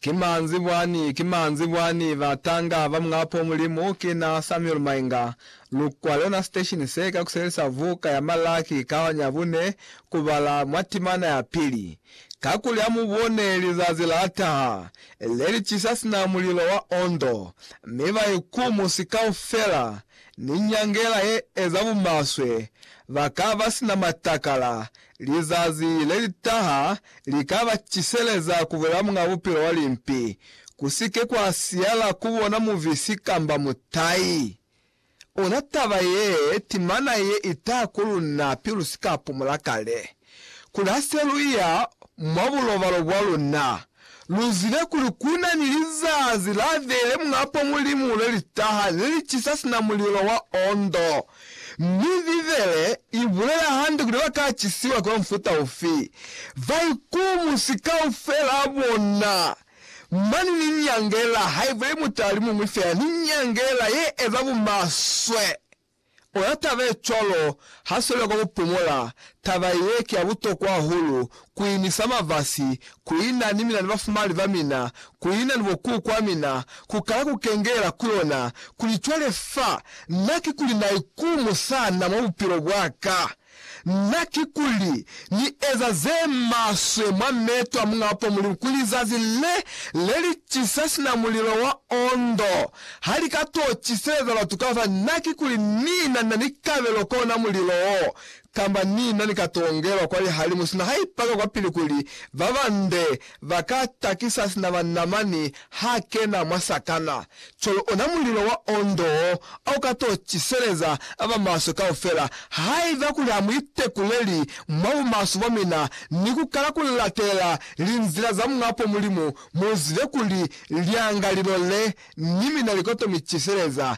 Ki manzi bwani, ki manzi bwani, batanga ba Muñapo Mulimu, ki na Samuel Mainga. Lukwa lona station se ka kuselisa vuka ya Malaki kaonyi ya bune kubala mwa timana ya pili. Kakuli amubone lizazi la taha, le li cisa sina mulilo wa ondo, mi ba ikumusi kaufela ni nyangela ye eza bumaswe, ba ka ba sina matakala, Lizazi le li taha li ka ba ciseleza ku bulela muñ'a bupilo wa limpi. Ku si ke kwa siyala ku bona mubisi kamba mutai. Ona taba ye timana ye i taha ku luna pilu si ka pumula kale. Kuli ha se lu iya mwa bulobalo bwa luna, Lu zibe kuli ku na ni lizazi la vele mwapo Mulimu le li taha le li cisa sina mulilo wa ondo. Mi Bibele i bulela hande kuli ba ka cisiwa kwa mufuta ufi. Baikumusi kaufela bona, mane ni nyangela, haibule mutali muñwi feela ni nyangela ye eza bumaswe. Ona taba ye cwalo ha sweli kwa ku pumola. Taba ye ki ya butokwa hahulu, ku inisa mavasi, ku ina ni mina ni bafumali ba mina, ku ina ni bo kuku a mina, ku kala ku kengela ku yona. Kuli cwale fa na ki kuli na ikumu sana mwa bupilo bwa ka. Na kikuli Ni eza ze maswe mwa meto a Muñ'a Upo Mulimu kuli zazi le le li cisa sina mulilo wa ondo ha li ka t'o ciseleza batu ka fa? Na kikuli Ni na na ni kabelo kwa ona mulilo wo, kamba Ni na ni ka t'o ngelwa kwa lihalimu sina ha ipaka kwapili kuli ba bande Ba ka takisa sina ba Namani ha kena mwa sakana, cwalo ona mulilo wa ondo o, o ka to ciseleza ba ba maswe kaufela. Haiba kuli ha mu itekuleli mwa bumaswe bwa mina ni ku kala ku latelela linzila za Muñ'a po Mulimu, mu zibe kuli lyangalilo le ni mina li ka to mi ciseleza.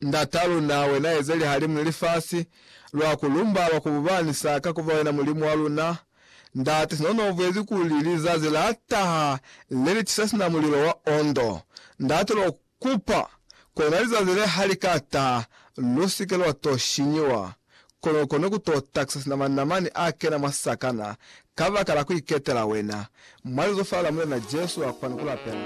Ndata luna, wena eze lihalimu ni lifasi, lwa ku lumba, lwa ku bubanisa, ka kuba wena Mulimu wa luna. Ndate, sina una ubwezi kuli lizazi la taha le li tisa sina mulilo wa ondo, Ndate, lwa kupa, kona lizazi le ha li ka taha, lu si ke lwa to shinyiwa. Kono kone ku to takisa sina manamani a kena mwa sakana, kabakala ku iketela wena. Mwa lizofa la Mulena Jesu, lwa kwani ku lapela.